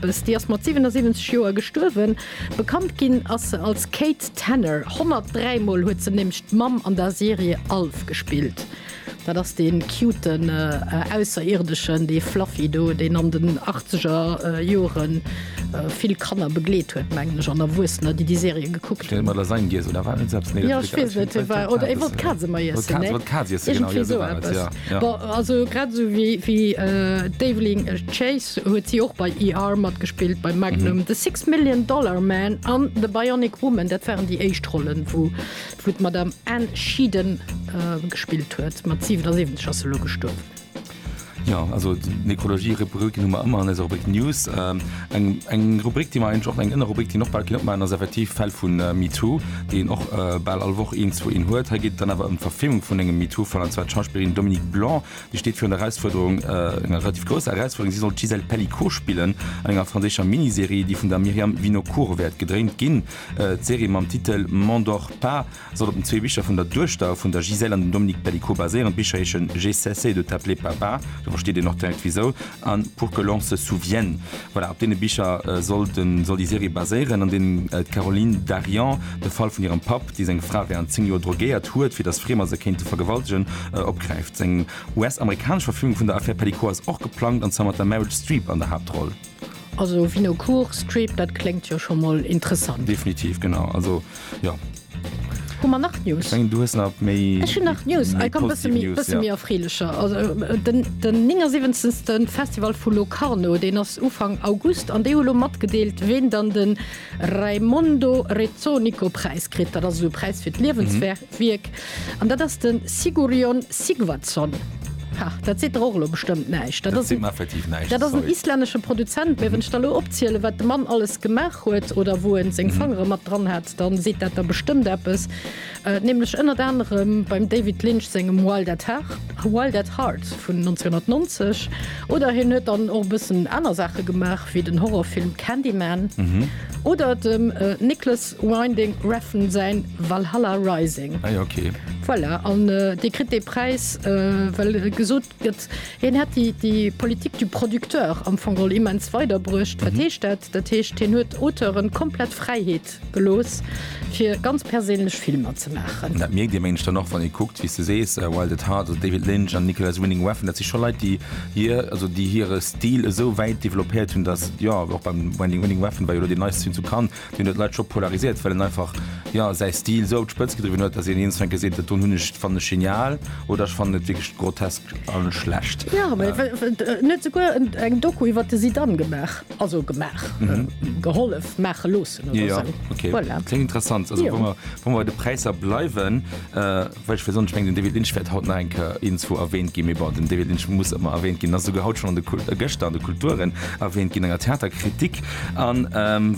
Si ass mat 77 Joer gestuerwen. Bekannt ginn ass se als Kate Tanner. 103 Mol huet se nämlech d'Mamm an der Serie Alf gespillt. Dat ass dee cuten Ausserierdëschen, dee Fluffy do, deen an den achtzeger Jore vill Kanner begleet huet, mengen ech, an Erwuessener, déi déi Serie gekuckt hunn. Ech weess et net, hie war. Oder e wollt d'Kaz ëmmer iessen, ne? Iergendwéi sou eppes. Bon, also grad esou wéi d'Evelyn Chase huet si och bei ER matgespillt, bei Magnum, The Six Million Dollar Man an The Bionic Woman. Dat waren déi éischt Rollen, wou d'Madame Anne Sheedan gespillt huet. Mat 77 ass se elo gestuerwen. Jo, also d'Necrologie-Rubriken hu mer ëmmer an eiser Rubrik News. Eng Rubrik, déi mer eigentlech och, eng Ënnerrubrik, déi een och bal kéint opmaachen, ass effektiv d'Fäll vu MeToo, déi een och bal all Woch een, zwou, een huet. Hei geet et dann awer ëm d'Verfilmung vun engem MeToo-Fall, an zwar d'Schauspillerin Dominique Blanc, déi steet virun der Erausfuerderung, enger relativ grousser Erausfuerderung. Si soll d'Gisèle Pelicot spillen an enger franséischer Miniserie, déi vun der Myriam Vinocourt wäert gedréint ginn. D'Serie mam Titel M'endors pas. Soll op den zwee Bicher vun der Duechter vun der Gisèle an dem Dominique Pélicot baséieren. D'Bicher heeschen J'ai cessé de t'appeler papa, do versteet een och direkt wisou, an Pour que l'on se souvienne. Voilà, op deene Bicher soll den, soll déi Serie baséieren, an deenen d'Caroline Dariant de Fall vun hirem Papp, dee seng Fra während 10 Joer drogéiert huet, fir datt Friemer se kéinte vergewaltegen, opgräift. Eng US-amerikanesch Verfilmung vun der Affär Pélicot ass och geplangt, an zwar mat der Meryl Streep an der Haaptroll. Also Vinocourt Strip, dat kléngt jo scho mol interessant. Definitiv, genau. Also, jo. Hu mer nach News? Ech mengen, du hues nach méi. Ech hunn nach News. Hei komm, bësse méi, bësse méi erfreelecher. Also den, den 79. Festival vu Locarno, deen ass Ufank August an déi hu lo matgedeelt, ween dann de Raimondo Rezzonico-Präis kritt. Dat ass esou e Präis fir d'Liewenswierk. An dat ass de Sigurjón Sigvardsson. Ha, dat seet der och elo bestëmmt näischt. Dat ass en islännesche Produzent. Mä wann ech der elo opzielen, wat de Mann alles gemaach huet oder wou en seng Fangere mat dran hat, da seet dat der bestëmmt eppes. Nämlech ënnert anerem beim David Lynch sengem Wild at Heart, Wild at Heart vun 1990. Oder hien huet dann och e bëssen aner Saache gemaach, wéi den Horrorfilm Candyman oder dem Nicholas Winding Refn säin Valhalla Rising. Ah jo, ok. Voilà, an dee kritt dee Präis, well gesot gëtt, hien hätt déi, déi Politique du producteur am Fong geholl immens weiderbruecht. Wat heescht dat? Dat heescht, hien huet d'Auteuren komplett Fräiheet gelooss, fir ganz perséinlech Filmer ze maachen. Dat mierkt ee Méindeg dann och, wann ee kuckt, wéi s de sees, Wild at Heart, also David Lynch an Nicolas Winding Refn, dat si scho Leit, déi hir, also déi hire Stil esou wäit developpéiert hunn, datt, jo, och beim Winding Refn war jo elo deen neiste Film zu Cannes, Deen huet d'Leit scho polarisiert, well en einfach, jo, säi Stil esou op d'Spëtz gedriwwen huet, datt een eens eng gesinn huet, dat do hunn ech, fannen ech genial oder ech fannen et wierklech grotesk a schlecht. Jo, mee en huet esouguer eng Doku iwwer de Zidane gemaach, also gemaach, gehollef maache loossen oder esou. Voilà. Kléngt interessant. Also wa mer bei de Präisser bleiwen. Well ech wéi, ech mengen den David Lynch wäert haut nach eng Kéier iergendzwou erwähnt ginn, mee bon, den David Lynch muss ëmmer erwähnt ginn, ass esouguer haut schonn an de, gëschter an de Kulturen erwähnt ginn, enger Theaterkritik an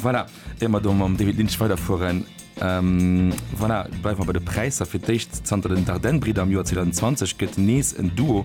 voilà. Ier mer do mam David Lynch weiderfueren, voilà, bleiwe mer bei de Präisser. Fir d'éischt, zanter den Dardenne-Bridder am Joer 2020 gëtt nees en Duo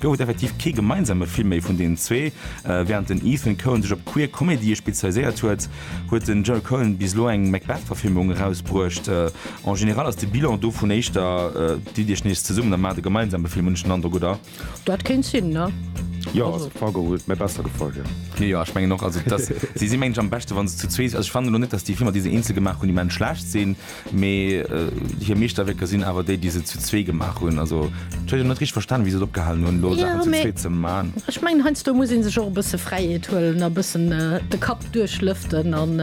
Gouf et effektiv kee gemeinsame Film méi vun deenen zwee. Wärend den Ethan Coen sech op queer Comedyë spezialiséiert huet, huet den Joel Coen bis elo eng Macbeth-Verfilmung erausbruecht. En general ass de Bilan dovun éischter, Ditt Iech nees zesummen a maacht e gemeinsame Film, hunn ech den Androck, oder? Dat kéint sinn, ne? Jo, also Fargo huet mir besser gefall, jo. Jo, jo, ech mengen och. Also, dass, si si mengen ech am beschte wa se zu zwee sinn. Also, ech fannen elo net, dass déi Filmer, déi se eenzel gemaach hunn, immens schlecht sinn. Mee hir Meeschterwierker sinn awer déi, déi se zu zwee gemaach hunn. Also, ech huet jo net richteg verstanen, wéi se et opgehalen hunn, elo Saachen zu zweet ze man. Jo, mee ech mengen, heiansdo muss ee sech och e bësse Fräiheet huelen a e bëssen de Kapp duerchlëften an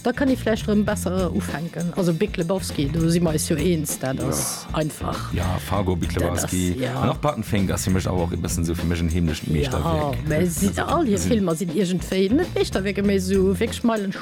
da kann ee vläicht erëm besser ufänken. Also Big Lebowski, do si mer eis jo eens, dat ass einfach. Jo, Fargo, Big Lebowski an och Barton Fink ass fir mech awer och ee bëssen esou fir mech en heemlecht Meeschterwierk. Jo, mä all hir Filmer sinn iergendwéi, net Meeschterwierker, mee esou wierklech Meilenstein.